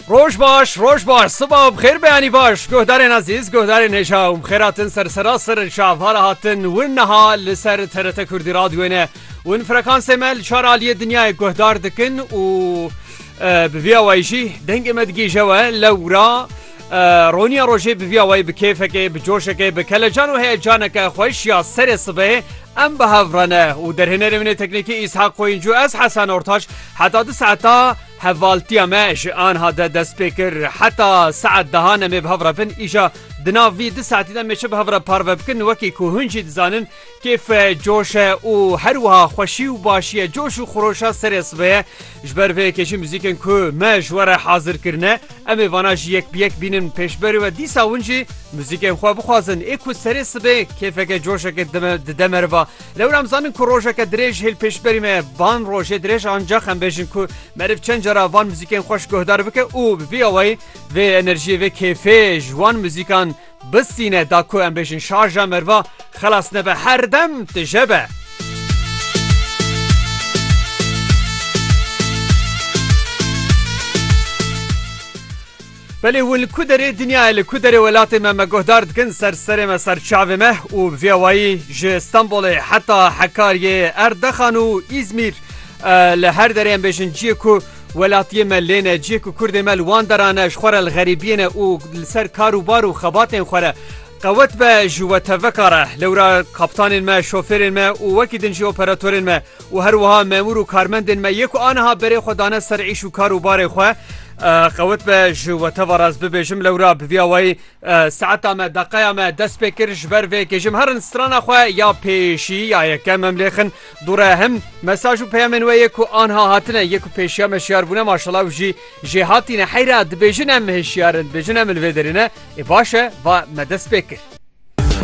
Roj baş, roj baş, siba bixêr beyanî baş, guhdarên ezîz, guhdarên hêja û xêratin ser serasir şavara hatin win niha li ser TRT Kurdî radyoyê ne. Win frekansê me li çar aliyê dinyayê guhdar dikin û bi vîya wayî jî dengê me digihîje we lewra Roniya rojê bi vîya wayî bi kêfekê, bi coşekê, bi kelecan û heyecaneke xweş ya serê sibehê em bi hev re ne û derhênerê min ê teknîkî Îshak Qoyîncû ez Hesen Ortaç heta di saeta hevaltiya me ji anha de dest pê kir. Heta saet dehan em ê bi hev re bin îja di nav vî di saetî de em ê çi bi hev re parve bikin wekî ku hûn jî dizanin Kêf e, coş e û her wiha xweşî û başî ye. Coş û xweroşa serê sibê ye. Ji ber vê yekê jî muzîkên ku me ji we re hazir kirine em ê vana jî yek bi yek bînin pêşberî we. Dîsa hûn jî muzîkên xwe bixwazin. Ê ku serê sibê kêfeke coşeke dide meriva. Lewra em zanin ku rojeke dirêj hêl pêşberî me ye. Van rojê dirêj ancax em bêjin ku meriv çend cara van muzîkên xweş guhdar bike û bi vî awayî vê enerjiyê vê kêfê ji wan muzîkan Bistîne da ku em bêjin şarja merva xelas nebe her dem tije be. Belê hûn li ku derê dinyayê li ku derê welatê me me guhdar dikin ser serê me ser çavê me û bi vê wayî ji Stenbolê heta Hekariyê Erdexan û Îzmîr li her derê em bêjin ciyê ku Welatiyê me lê ne, cihê ku kurdê me li wan deran e, ji xwe re li xerîbiyê ne û li ser kar û bar û xebatên xwe re qewet be ji we tevveka re. Lewra kaptanên me, şofêrên me û wekî din jî operatorên me û her wiha memûr û karmendên me yê ku aniha berê xwe dane ser îş û kar û barê xwe qewet be ji we teva re ez bibêjim lewra bi vî awayî saeta me deqeya me dest pê kir ji ber vê kê ji herin strana xwe ya pêşî ya yekem em lêxin Dûre him mesaj û peyamên we yê ku anha hatine yê ku pêşiya me şiyar bûne maşela û jî jê hatîne heyra dibêjin em hişiyar in dibêjin em li vê derê ne ê baş e va me dest pê kir.